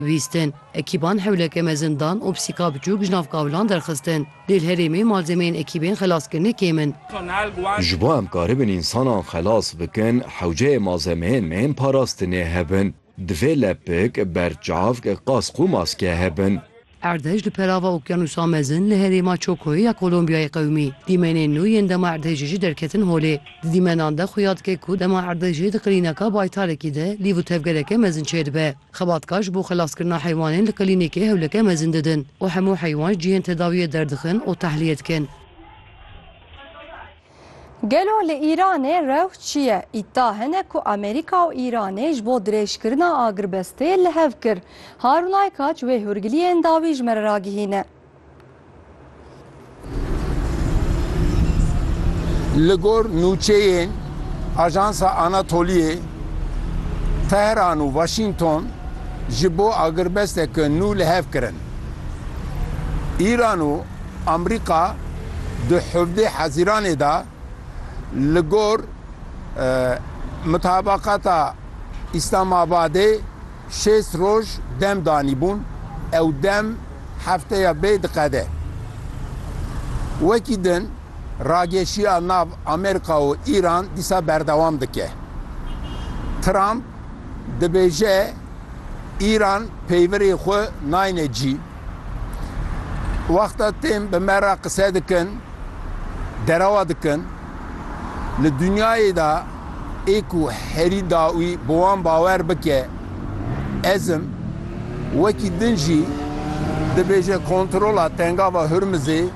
Vîstin, ekîban hewleke mezin dan û pisîka biçûk ji nav kavilan derxistin. Lê li herêmê malzemeyên ekîbên xelaskirinê kêm in. Ji bo em karibin însanan xelas bikin, hewceyê malzemeyên me yên parastinê hebin. Divê lepik, berçavk, qask û maske hebin. Erdhej li perava Okyanûsa Mezin li herêma Çokoyê ya Kolombiyayê qewimî. Dîmenên nû yên dema erdhejê jî derketin holê. Di dîmenan de xuya dike ku dema erdhejê di qilîneka baytarekî de lîv û tevgereke mezin çêdibe. Xebatkar ji bo xelaskirina heywanên li klînîkê hewleke mezin didin û hemû heywan ji cihên tedawiyê derdixin û tehliyê dikin. Gelo li Îranê rew çi ye? Îdda hene ku Amerîka û Îranê ji bo dirêjkirina agirbestê li hev kir. Harun Aykaç wê hûrgiliyên dawî ji me re ragihîne. Li gor nûçeyên Ajansa Anatoliyê, Tehran û Waşîngton ji bo agirbesteke nû li hev kirin. Îran û Amerîka di hevdeh Hezîranê de Li gor mutabakata Îslamabadê şêst roj dem danîbûn, ew dem hefteya bê diqede. Wekî din rageşiya nav Amerîka û Îran dîsa berdewam dike. Trump dibêje Îran peyvirê xwe nayne cî. Wexta tên bi me re qise dikin, derewa dikin, li dinyayê de ê ku herî dawî bi wan bawer bike, ez im, wekî din jî dibêje kontrola Tengava Hurmizê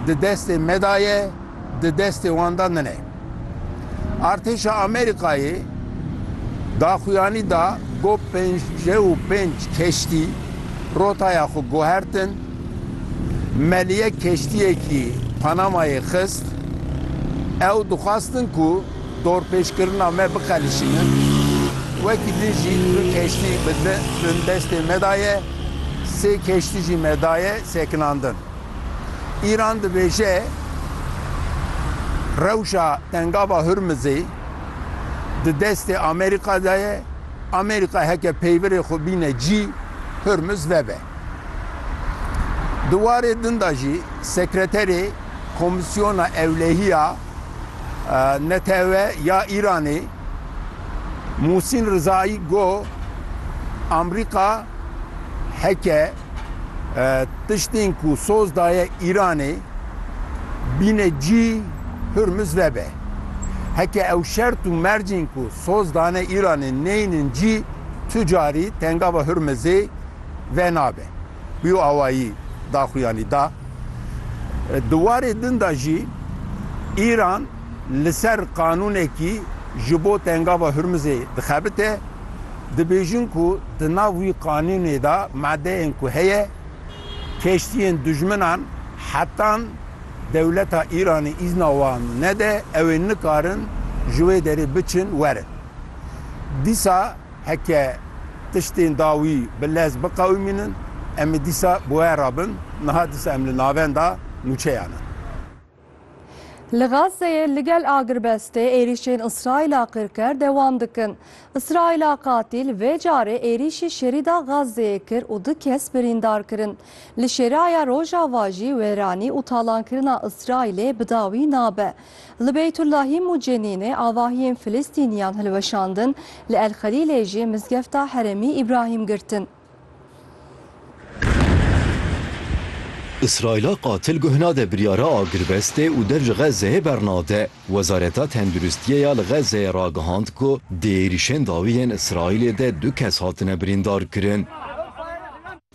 di destê me de ye, Di destê wan de nine. Artêşa Amerîkayê daxuyanî da ku pêncî û pênc keştî rotaya xwe guhertin. Meliye keştiyekî Panamayê xist. Ew dixwestin ku dorpêçkirina me biqelişînin. Wekî din jî du keştî bi destê me de ye. Sê keştî jî me daye sekinandin. Îran dibêje rewşa Tengava Hurmizê di destê Amerîka de ye, Amerîka heke peyvirê xwe bîne cî Hurmiz vebe. Di warê din de jî Sekreterê Komîsyona Ewlehiya NTEW ya Îranê Musîn Rizayî got, Amerîka heke Tiştên ku soz daye Îranê bîne cî Hurmuz vebe. Heke ew şert û mercên ku soz dane Îranê neynin cî tu carî tengava Hurmuzê venabe. Bîyo awayî daxuyanî da. Di warê din de jî Îran, li ser qanûnekî ji bo Tengava Hurmizê dixebite, dibêjin ku di nav wî qanûnê de madeyên ku heye, keştiyên dijminan hetan dewleta Îranê îzna wan nede ew ê nikarin ji wê derê biçin werin. Dîsa heke tiştên da wî bi lez biqewimînin em ê dîsa bi we re bin, niha dîsa em li navenda nûçeyan in. Li Gazeyê li gel agirbestê êrîşên Îsraîla qirker dewam dikin. Îsraîla qatîl vê carê êrîşî Şerîda Gazeyê kir û du kes birîndar kirin. Li Şeraya Rojava jî wêranî û talankirina Îsraîlê bi dawî nabe. Li Beytulahîm û Cenînê avahiyên Filistîniyan hilweşandin, li El Xelîlê jî mizgefta Herêmî Îbrahîm girtin. Îsraîla qatil guh nade biryara agirvestê û dev ji Xezzeyê bernade. Wezareta Tenduristiyê ya li Xezzeyê ragihand ku di êrîşên dawî yên Îsraîlê de du kes hatine birîndarkirin.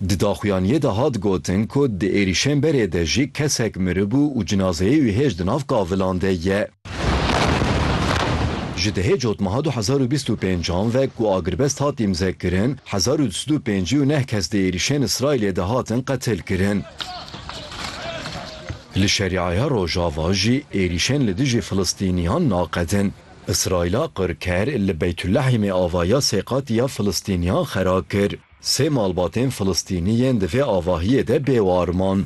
Di daxuyaniyê de hat gotin ku di êrîşên berê de jî kesek miribû û cinazeyê wî hêj di nav kavilan de ye. Ji dehê cotmeha du hezar û bîst û pênc an ve ku agrbest hat îmzekirin, hezar û du sed û pêncî û neh kes di êrîşên Îsraîlê de hatin qetilkirin. Li Şerîaya Rojava jî êrîşên li dijî Filistîniyan naqedin. Îsraîla qirker li Beytulehîmê avaya sê qatî ya Filistîniyan xera kir. Sê malbatên Filistînî yên di vê avahiyê de bêwar man.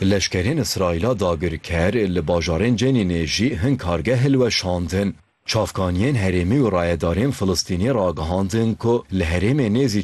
Leşkerên Îsraîla dagirker li bajarên Cenînê jî hin kargeh hilweşandin. Çavkaniyên herêmî û rayedarên Filistînî ragihandin ku li herêmê nêzî